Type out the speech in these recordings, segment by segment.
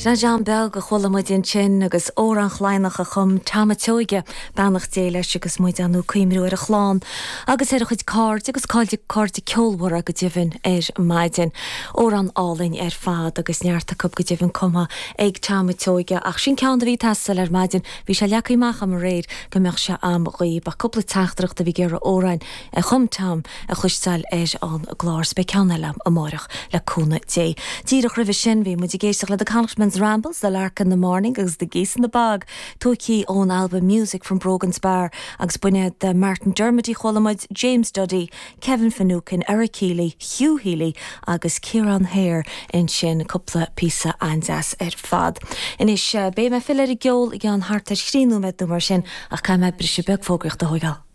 'Sé Dan Bheil a chuala muid ansin agus Amhrán Chlaidhní a chum Tom a' tSeoige, beannacht Dé leis, agus muid inniu ag cuimhniú ar a chlann agus ar a chuid cairde agus cairde cairde ceolmhara go deimhin ar maidin. Amhrán álainn ar fad agus neart acu go deimhin cumtha ag Tom a' tSeoige ach sin ceann a bhí ag teastáil ar maidin, bhí sé leagtha amach agam aréir go mbeadh sé agam daoibh. Ach cúpla teachtaireacht a bhí ag iarraidh amhráin. a chum Tom, a chloisteáil ar an gclár, is beidh ceann eile ann amárach, le cúnamh Dé. Díreach roimhe sin, bhí muid ag éisteacht le 'The Connachtman's Rambles', 'The Lark in the Morning' agus 'The Geese in the Bog', tógtha ón albam 'Music from Brogan's Bar', agus Banna de Martin Dermody chuala muid James Duddy, Kevin Finucane, Eric Healy, Hugh Healy agus Ciarán Hehir ansin, cúpla píosa an-deas ar fad. Anois, beidh mé ag filleadh ar an gceol i gceann thart ar thrí nóiméad nó mar sin, ach caithfidh mé briseadh beag fógraíochta a thógáil.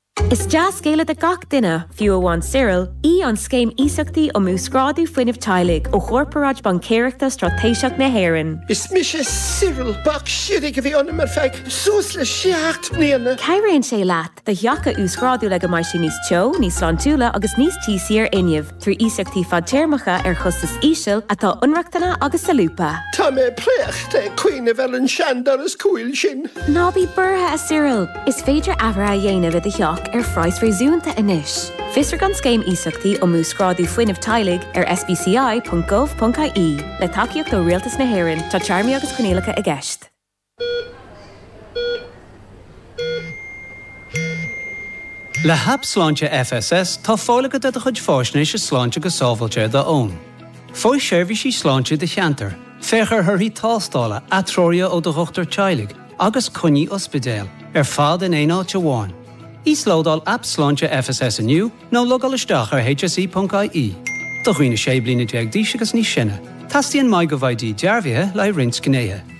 Is dea-scéala do gach duine, fiú amháin Cyril, í an Scéim Iasachtaí um Uasghrádú Fuinnimh Teaghlaigh ó Chorparáid Baincéireachta Straitéiseach na hÉireann. Is mise Cyril. Béicshimhigh a bhí ionam ar feadh suas le seacht mbliana. Cabhraíonn sé leat do theach a uasghrádú le go mbeidh sé níos teo, níos sláintiúla agus níos tíosaí ar fhuinneamh. trí iasachtaí fadtéarmacha ar chostas íseal atá inrochtana agus solúbtha. Tá mé préachta ag cuimhneamh ar an seandoras cúil sin. Ná bí buartha, a Cyril! Is féidir athruithe a dhéanamh i do theach ar phraghas réasúnta anois. Fiosraigh an Scéim Iasachtaí um Uasghrádú Fuinnimh Teaghlaigh ar sbci.gov.ie. Le tacaíocht ó Rialtas na hÉireann, tá téarmaí agus coinníollacha i gceist. Le hAip Sláinte FSS tá fáil agat ar do chuid faisnéise sláinte go sábháilte ar d'fhón. Faigh seirbhísí sláinte i do cheantar, féach ar thorthaí tástála, atreoruithe ó do dhochtúir teaghlaigh agus coinní ospidéil, ar fad in aon áit amháin. Íoslódáil Aip Sláinte FSS inniu nó logáil isteach ar hse.ie. Do dhaoine 16 bliana d'aois agus níos sine, teastaíonn MyGovID dearbhaithe le haghaidh roinnt gnéithe.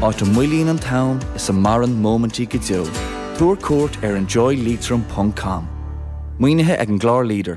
áit a mhoillíonn an t-am is a maireann móimintí go deo. Tabhair cuairt ar enjoyleitrim.com. Maoinithe ag an gclár leader.